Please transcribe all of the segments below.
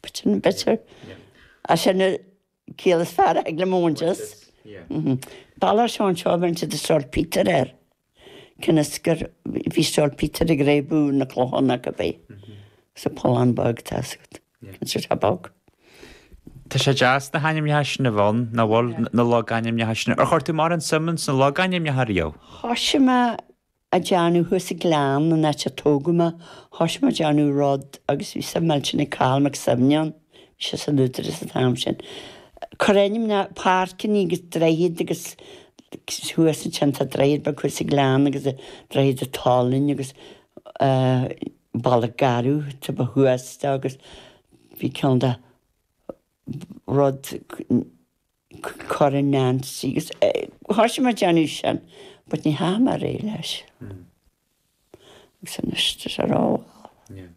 bitter and bitter. Sin an chiall is fearr a thig liom a bhaint as. Balla ar Sheán seo a bhain siad saltpetre air. Cionn is gur bhí saltpetre ag réabadh na clochán acu bhí. Sa pollán beag atá agat. Cionn is tá bog. Tá sé deas na hainmneacha sin a bheith ann, nach bhfuil, na logainmneacha sin. Ar chuir tú mórán suim ins na logainmneacha riamh? Thosaigh mé ag déanamh thuas i Gleann, an áit a tógadh mé, thoisigh mé ag déanamh rud agus bhí suim millteanach ag Cathal Mac Suibhne ann, bhí sé san Údarás an t-am sin, cur ainmneacha ar páirceannaí agus droichid agus thuas ansin tá droichead beag thuas i Gleann agus Droichead an tSalainn agus Balla Garbh taobh thuas de agus bhí ceann de rud, Corn Nancy agus thoisigh mé ag déanamh sin but ní dheachaigh mé ar aghaidh leis. Agus anois tá sé ró-mhall.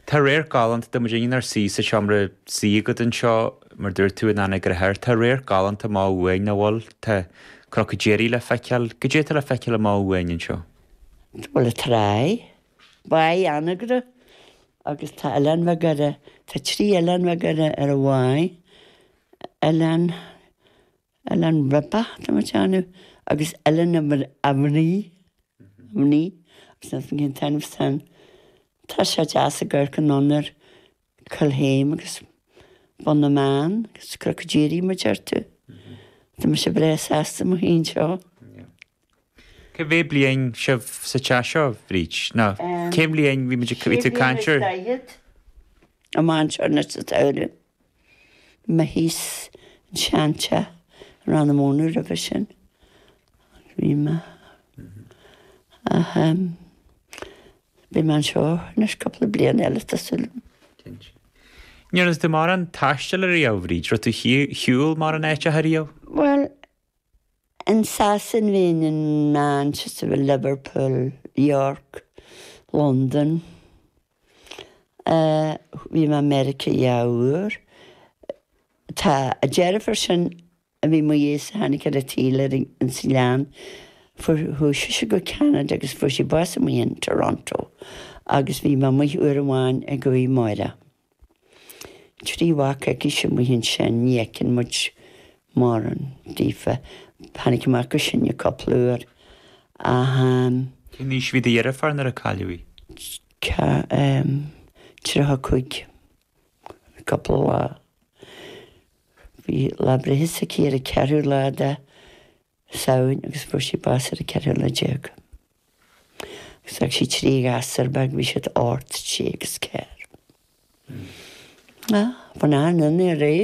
Tá radharc galánta tá muid inniu inár suí sa seomra suí agat anseo, mar dúirt tú in Anagaire Thoir. Tá radharc galánta amach uainn, bhuel tá Cnoc an Diaraigh le feiceáil. Goidé tá le feiceáil amach uainn anseo? Bhuel, an tráigh. Báigh Anagaire agus tá oileáin bheaga air, tá trí oileán bheaga air ar an bháigh, Oileán, Oileán Ribeach tá mé ag déanamh agus Oileán a Mhnaoi, Mhnaoi, agus níl fhios a'm cén t-ainm san, tá sé deas i gCorca an Fhionnuir, Calhame agus Bun na mBeann agus Cnoc an Diaraigh mar a dúirt tú? Tá mise breá sásta liom féin anseo. Cá mhéad bliain sibh sa teach seo, Bríd? Nó cén bhliain bhí tú ag caint ar? Sé bliana is daichead. Amach anseo anois sa tsamhradh. Bhí mé thíos i seanteach in Rann na Mónadh roimhe sin. Bhí mé. Ach Beidh mé anseo anois cúpla bliain eile tá suil liom. Cinnte. Ndearna tú mórán taistil ariamh, Bhríd, raibh tú ar shiúl mórán áiteacha ariamh? Bhuel, in Sasain bhí mé in Manchester, in Liverpool, York, Londain, eh, bhí mé i Meiriceá dhá uair. Tá an deirfiúr sin a bhí i mo dhiaidhse a tháinig ar an tsaol ins an Ghleann. Chuaigh sise go Ceanada agus fuair sí bás amuigh in Toronto agus bhí mé amuigh uair amháin aici, Máire. Trí mhac aici amuigh ansin, ní fheiceann muid mórán daofa. Tháinig mac acu anseo cúpla uair ach. Cén aois a bhí do dheirfiúr nuair a cailleadh í? Tá, 35. cupla lá. Bhí lá breithe s'aici ar an ceathrú lá de Samhain agus fuair sí bás ar an ceathrú lá déag. Agus d'fhág sí trí ghasúr bheaga, bhí siad ocht, trí agus ceathair. Bhí an-ionadh ar é.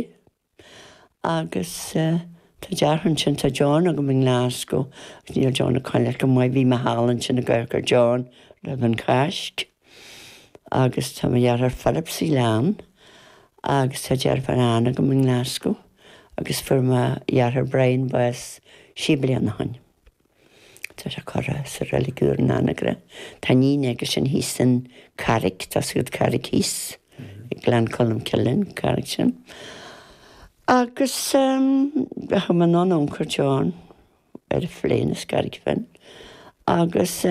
Agus tá deartháir ansin, tá John agam i nGlaschú, agus níl John ag coinneáil go maith. Bhí mé thall ansin ag amharc ar John roimh an Cháisc. Agus tá mo dheartháir Philip sa Ghleann, agus tá deirfiúr Anne agam i nGlaschú, agus fuair mo dheartháir Brian bás sé bliana ó shoin. Tá sé curtha sa reilig úr in Anagaire. Tá iníon aige sin thíos san Carraig, tá a fhios agat Carraig thíos i Gleann Colm Cille an Carraig sin. Agus chuaigh mé anonn ionsar John ar an phlane as Carraig Finn agus.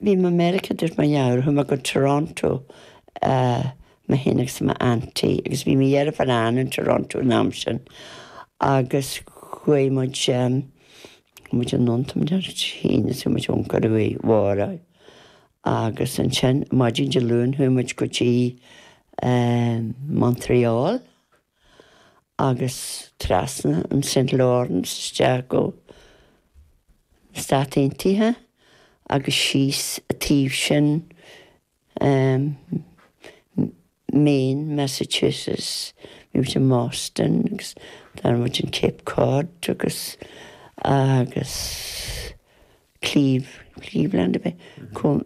Bhí mé i Meiriceá, dúirt mo dheartháir, chuaigh mé go Toronto mé fhéin agus mo aunty agus bhí mo dheirfiúr Ann in Toronto an am sin agus chuaigh muid, chuaigh muid anonn maidin Dé hAoine is bhí muid ann go Rí Mháire agus ansin maidin Dé Luain chuaigh muid go dtí Montreal. agus trasna an St Lawrence isteach go na Stáit Aontaithe agus síos an taobh sin Maine, Massachusetts, bhí muid i mBoston agus d'fhan muid in Cape Cod agus, agus. Cleeve, Cleveland a bheith chomh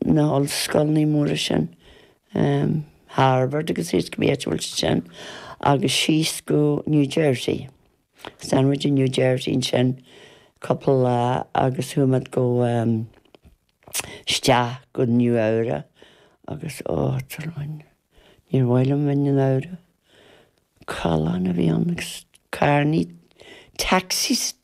na hollscoileanna móra sin, Harvard agus thíos cibé áit a bhfuil sé sin agus síos go New Jersey. Is d'fhan muid i New Jersey ansin cupla lá agus chuaigh muid go isteach go Nua-Eabhrac agus ó tsrón níor mhaith liom bheith i Nua-Eabhrac. Callán a bhí ann agus carrannaí, taxis